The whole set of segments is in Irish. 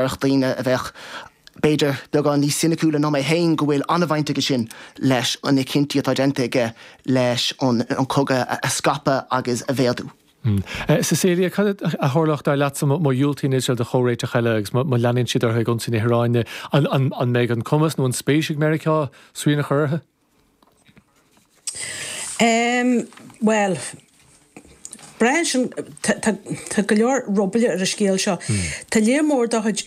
mbeadh daoine a bheadh, b'fhéidir, beagán níos soiniciúla ná mé féin go bhfuil an-bhaint aige sin leis na cinntí atá déanta aige leis an cogadh a scaipeadh agus a mhéadú. Cecilia, cad a tharlódh, dar leatsa, má dhiúltaíonn Iosrael do chomhréiteach eile agus má leanann siad orthu ag ionsaí na hIaráine? An mbeidh an cumas nó an spéis ag Meiriceá srian a chur orthu? Bhuel, braitheann sin, tá go leor rólaí ar an scéal seo. Tá léar mór de chuid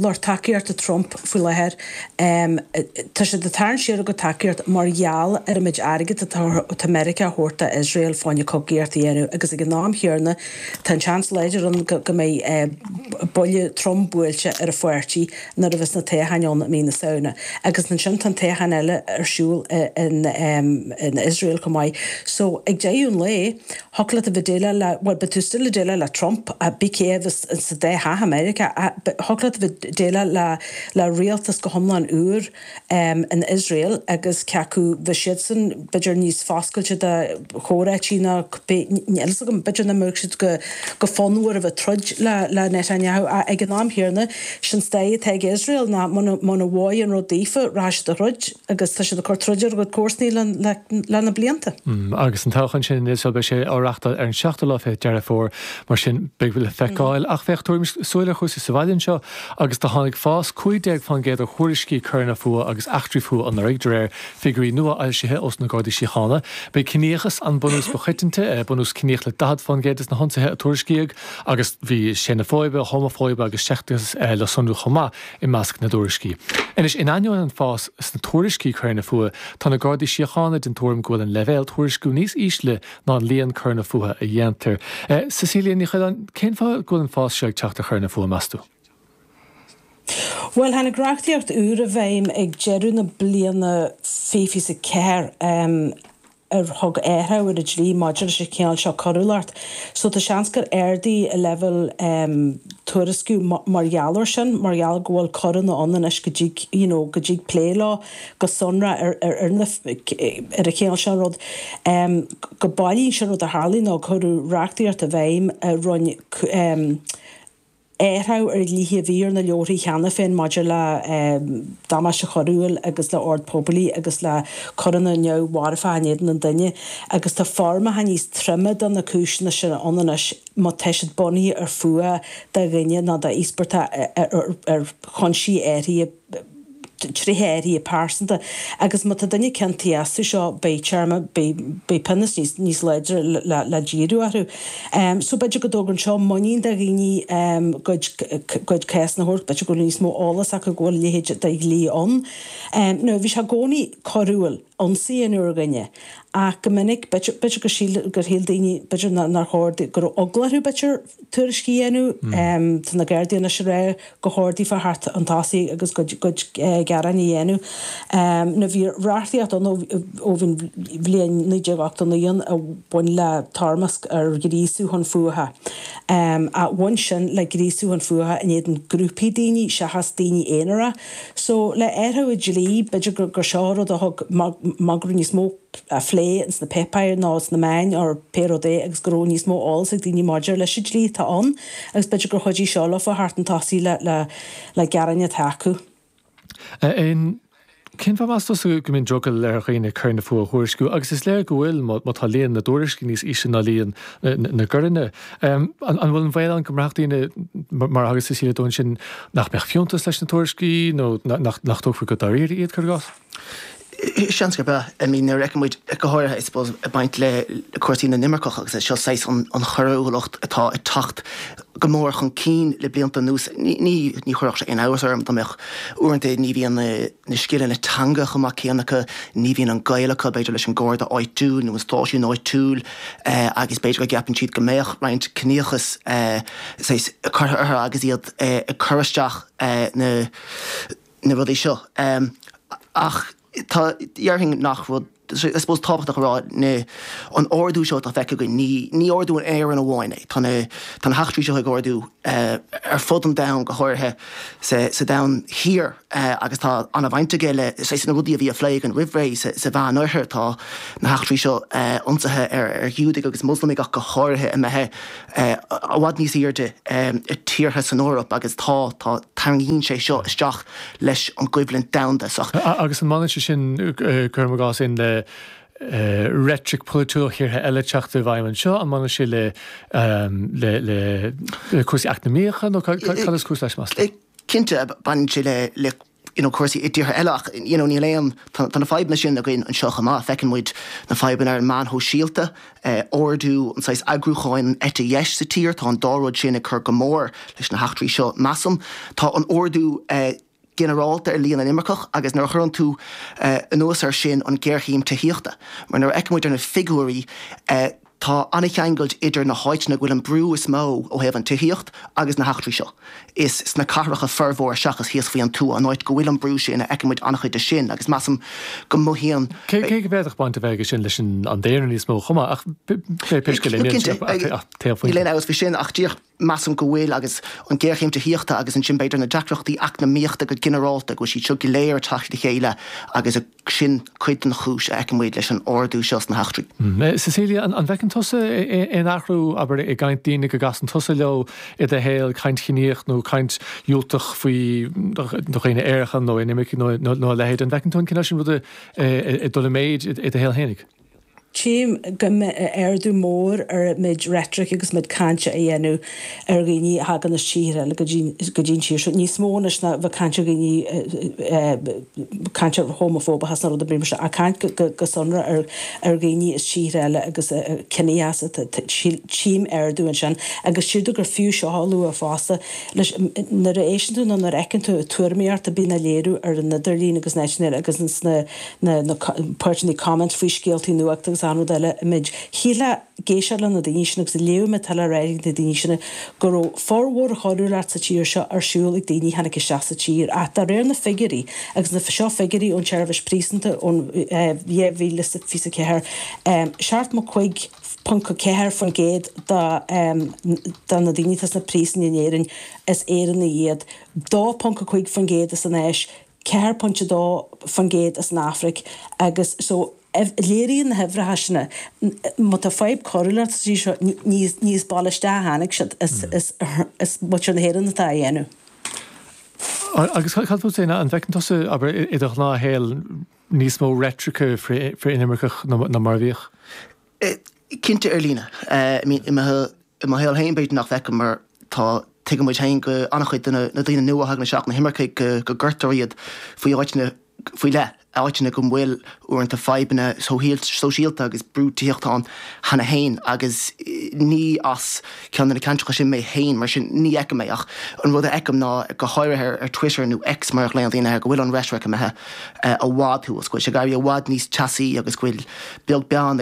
lucht tacaíochta Trump faoi láthair, tá siad ag tarraingt siar a gcuid tacaíochta mar gheall ar an méid airgid atá Meiriceá a thabhairt d'Iosrael fá choinne cogaíocht a dhéanamh agus ag an am chéanna tá an seans láidir ann go mbeidh buille trom buailte ar a pháirtí nuair a bheas na toghcháin ann i mí na Samhna, agus ansin tá an toghchán eile ar siúl in Iosrael chomh maith. So, ag deireadh an lae, thiocfadh leat a bheith ag déileáil le, bhuel, beidh tú still ag déileáil le Trump, ach cibé cé a bheas sa dá theach i Meiriceá, thiocfadh leat a bheith ag déileáil le rialtas go hiomlán úr, in Iosrael agus cé acu bheadh siadsan, b'fhéidir, níos foscailte do chomhráití ná cibé, níl a fhios agam, b'fhéidir nach mbeadh siad go fonnmhar a bheith ag troid le Netanyahu ach ag an am chéanna, sin stair atá ag Iosrael ná muna mbaineann an rud daofa rachaidh siad ag troid agus tá siad ag cur troid ar a gcuid comharsanaí leis na blianta. Agus an toghchán sin in Iosrael, beidh sé á reachtáil ar an seachtú lá fichead Deireadh Fómhair, mar sin beidh le feiceáil ach má thugaimid súil ar chúrsaí sa bhaile anseo. agus do tháinig fás 15% ar thuairiscí coireanna fuatha agus eachtraí fuatha anuraidh, de réir figiúirí nua-fhoilsithe ós na Gardaí Síochána. B'é ciníochas an bunús ba choiteanta, bunús ciníoch le 40% de na hionsaithe a tuairiscíodh, agus bhí seineafóibe, homafóibe agus seicteachas le sonrú chomh maith i measc na dtuairiscí. Anois, in ainneoin an fás sna tuairiscí coireanna fuatha, tá na Gardaí Síochána den tuairim go bhfuil an leibhéal tuairisciú níos ísle ná an líon coireanna fuatha a dhéantar. Cecilia Ní Choileáin, cén fáth go bhfuil an fás seo ag teacht ar choireanna fuatha, meas tú? Bhuel, tháinig reachtaíocht úr i bhfeidhm ag deireadh na bliana 2024 a thug aghaidh ar an dlí maidir leis an chineál seo coiriúlacht, so tá seans gur ardaigh an leibhéal tuairisciú mar gheall air sin, mar gheall go bhfuil coireanna ann anois go dtig, you know, go dtig plé leo. go sonrach ar an chineál seo rud go mbailíonn sé an rud a tharlaigh nó cuireadh reachtaíocht i bhfeidhm a rinn athrú ar dhlíthe a bhí ar na leabharthaí cheana féin maidir le damáiste coiriúil agus le ord poiblí agus le coireanna neamh-mharfacha in éadan an duine agus tá foirmeacha níos troime do na cúiseanna sin ann anois má tá siad bunaithe ar fuath do dhuine nó do íospartach ar chúinsí áithrí dtréithe áirithe pearsanta, agus má tá duine ciontaithe astu seo, beidh téarma, beidh pionós níos láidre le díriú orthu. So b'fhéidir go dtógann seo muinín de dhaoine a gcuid cásanna a thabhairt, b'fhéidir go bhfuil níos mó eolas acu go bhfuil a leithéid de dhlí ann. Now bhí sé i gcónaí coiriúil ionsaí a dhéanamh ar dhuine, ach go minic, b'fhéidir gur shíl, gur shíl daoine, b'fhéidir nár chóir, go raibh eagla orthu b'fhéidir, tuairisc a dhéanamh. Tá na Gardaí anois ag rá gur chóir daofa theacht chun tosaigh agus a gcuid gearáin a dhéanamh. Now bhí reachtaíocht ann ó bhí an bhliain 1989 a bhain le toirmeasc ar ghríosú chun fuatha, bhain sin le gríosú chun fuatha in éadan grúpaí daoine seachas daoine aonair. So le athrú an dlí b'fhéidir gur seo rud a thug rud a raibh níos mó. plé sna péipéir nó sna meáin or pé rud é agus go raibh níos mó eolas ag daoine maidir leis an dlí atá ann agus b'fhéidir gur chuidigh seo leofa theacht chun tosaigh le gearáin atá acu. Cén fáth meas tusa go mbíonn drogall ar dhaoine coireanna fuatha a thuairisciú agus is léir go bhfuil má tá líon na dtuairiscí níos ísle ná líon na gcoireanna. An bhfuil an baol ann go mbraithfeadh daoine mar a thagair Síle dó ansin nach mbeadh fiúntas leis na tuairiscí nó nach dtógfaí go dáiríre iad cuir i gcás? Seans gurb ea. I mean nuair a fheiceann muid, go háirithe I suppose ag baint le cúrsaí na n-imirceach agus é seo saghas an choiriúlacht atá ag teacht go mór chun cinn le blianta anuas. Ní, ní chuirfeadh sé aon iontas orm dá mbeadh, uaireanta ní bhíonn na, na scileanna teanga chomh maith céanna acu, ní bhíonn an gaol acu b'fhéidir leis an nGarda áitiúil nó an stáisiún áitiúil eh agus b'fhéidir go gceapann siad go mbeadh roinnt ciníochas eh saghas curtha orthu agus iad eh ag cur isteach eh na na rudaí seo ach tá, dhéarfainn an rud, I suppose tábhachtach a rá, na, an ardú seo atá feicthe againn, ní, ní ardú in Éirinn amháin é, tá na, tá na heachtraí seo ag ardú ar fud an domhain, go háirithe sa, sa domhan thiar agus tá ana bhaint aige le, you know, na rudaí a bhí á phlé againn roimh ré, sa, sa Mheán Oirthear tá na heachtraí seo, ionsaithe ar, ar Ghiúdaigh agus Muslamaigh ach go háirithe imithe i bhfad níos airde i dtíortha san Eoraip agus tá, tá, tarraingítear é seo isteach leis an gcoimhlint domhanda seo. Agus an mbainfeadh sé sin, cuirim i gcás, in le reitric pholaitiúil tíortha eile ag teacht i bhfeidhm anseo, an mbainfeadh sé le, le, le, le cúrsaí eacnamaíocha nó cad is cúis leis meas tú. Cinnte, baineann sé le, le. you know cúrsaí i dtíortha eile ach you know níl aon, tá na fadhbanna sin againn anseo chomh maith, feiceann muid na fadhbanna ar na meáin shóisialta, ardú an saghas eagrúcháin an eite dheis sa tír, tá an dá rud sin ag cur go mór leis na heachtraí seo measaim. Tá an t-ardú ginearálta ar líon na n-imirceach agus nuair a chuireann tú anuas air sin an ghéarchéim tithíochta mar nuair a fhéachann muid ar na figiúirí Tá an-cheangal idir na háiteanna go bhfuil an brú is mó ó thaobh an tithíocht agus na heachtraí seo. Is sna cathracha formhór seachas thíos faoi an tuath san áit go bhfuil an brú sin a fheiceann muid an-chuid de sin agus measaim go mothaíonn. Cé go bhféadfadh baint a bheith aige sin leis an daonra níos mó chomh maith ach pé scéal é níl sin ach taobh amuigh de sin. measaim go bhfuil, agus an ghéarchéim tithíochta agus ansin b'fhéidir na deacrachtaí eacnamaíochta go ginearálta, go bhfuil siad seo go léir ag teacht le chéile agus sin cuid den chúis a fheiceann muid leis an ardú seo sna heachtraí. Cecilia, An bhfeiceann tusa aon athrú, abair, i gcaint daoine go gcasann tusa leo i do shaol, caint chiníoch nó caint dhiúltach faoi dhaoine aeracha nó inimircigh nó a leithéid, an bhfeiceann tú an cineál sin ruda ag dul i méid i do shaol fhéinig? Tchím go bhfuil ardú mór ar an méid reitrice agus an méid cainte atá á dhéanamh ar dhaoine a thagann as tíortha eile go dtí'n tír seo, níos mó anois ná a bheith caint ar dhaoine, caint homafóbach sna rudaí briomhar seo, ach caint go sonrach ar dhaoine as tíortha eile agus as ciníocha. Tchím ardú ansin. Agus sílim gur fiú seo a lua fosta, leis, nuair a éisteann tú nó nuair a fheiceann tú tuairimí a bhíonn á léiriú ar an idirlíon agus an eitinéar agus sna. na páirteanna comment faoi scéaltaí nuachta agus an rud eile, shílfeá ag éisteacht leis na daoine sin agus ag léamh a bhfuil le rá ag na daoine sin go raibh formhór coiriúlachta sa tír seo ar siúl ag daoine a tháinig isteach sa tír ach de réir na bhfigiúirí, agus seo figiúirí ón tseirbhis phríosúin ón 2024, 75.4% de na daoine atá sna príosúin in Éirinn is Éireannaigh iad, 2.5% as an Áis, 4.2% as an Afraic agus so léiríonn na huimhreacha sin má tá fadhb coiriúlachta sa tír seo ní as baile isteach a tháinig sí, is muintir na hÉireann atá á dhéanamh. Agus cad fút féin, an bhfeiceann tusa, abair, i do ghnáthshaol níos mó reitrice frith-inimirceach ná mar a bhíodh? Cinnte ar líne. I mo shaol féin b'fhéidir nach bhfeicim mar tá, tuigeann muid féin go an-chuid de na daoine nua a thagann isteach, na himircigh, go gcuirtear iad go háiteanna faoi leith, áiteanna go bhfuil uaireanta fadhbanna sóisialta agus brú tithíochta ann cheana féin agus ní as. ceann de na ceantracha sin mé féin, mar sin ní fheicim é ach an rud a fheicim ná, go háirithe ar Twitter, nó X mar a ghlaonn daoine air, go bhfuil an reitric imithe i bhfad thuas, go bhfuil sé ag éirí i bhfad níos teasaí agus go bhfuil beag, beagán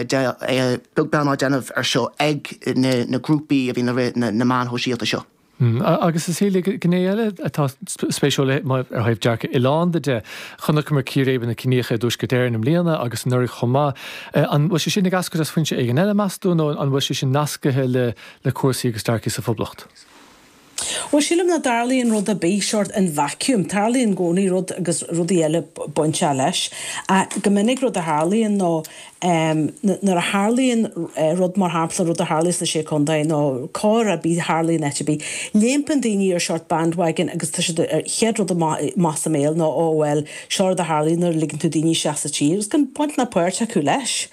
á déanamh ar seo ag na grúpaí a bhíonn ag rith na meáin shóisialta seo. Agus is dócha, gné eile atá spéisiúil, ó thaobh dearcadh oileánda de, Chonaiceamar círéibeanna ciníocha i dTuaisceart Éireann i mbliana agus anuraidh chomh maith. An bhfuil sé sin ag eascairt as foinse éigin eile, meas tú, nó an bhfuil sé sin nascaithe le cúrsaí agus dearcaí sa Phoblacht? Bhuel, sílim nach dtarlaíonn rud ar bith mar seo in vacuum. Tarlaíonn i gcónaí rud agus rudaí eile bainteach leis. Ach go minic rud a tharlaíonn ná em, nuair a tharlaíonn rud, mar shampla, rud a tharlaíos sna Sé Contae nó coir ar bith a tharlaíonn áit ar bith, léimeann daoine ar seort bandwagon agus tá siad ar, chéad rud amach as a mbéal ná oh, well, seo rud a tharlaíonn nuair a ligeann tú daoine isteach sa tír agus gan baint ná páirt acu leis.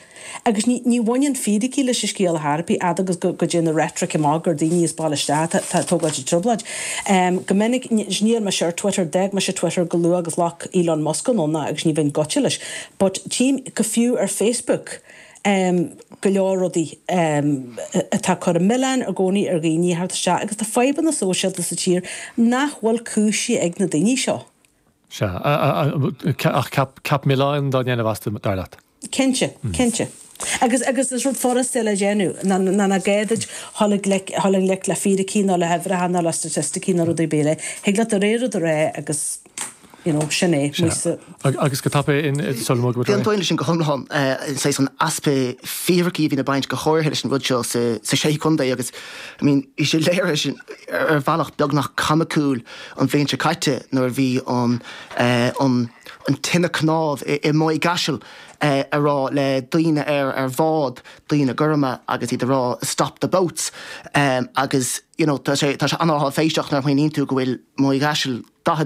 Agus ní, ní bhaineann fíricí leis an scéal ar chor ar bith, fhad agus go, go dtéann an reitric amach gur daoine as baile isteach atá, atá ag tógáilt an trioblóid. Em, go minic, níl mise ar Twitter, d'fhág mise Twitter chomh luath agus a ghlac Elon Musk ann agus ní bheinn gaibhte leis. But tchím go fiú ar Facebook go leor rudaí atá ag cur an milleáin i gcónaí ar dhaoine ag teacht isteach agus tá fadhbanna sóisialta sa tír nach bhfuil cúisithe ag na daoine seo. Sea. Ach ceap milleáin dá ndéanamh astu, dar leat? Cinnte. Cinnte. Agus agus is rud furasta le déanamh ná ná ní gá duit dhul i gleic dhul i ngleic le fíricí nó le huimhreacha nó le staitisticí nó rud ar bith eile. Thig leat do rogha rud a rá agus. you know, sin é, muise. Agus go tapa é in It is Solomon Gilroy. D'aontóinn leis sin go hiomlán, saghas an easpa fíricí a bhíonn ag baint go háirithe leis an rud seo sa Sé Contae agus, I mean, bhí sé léirithe ar bhealach beagnach coimicúil an bhliain seo caite nuair a bhí an, an, an tine cnámh i Maigh gCaiseal ag rá le daoine ar ar bhád, daoine gorma agus iad ag rá 'stop the boats' agus, you know, tá sé, tá sé an-áiféiseach nuair a smaoiníonn tú go bhfuil Maigh gCaiseal 40.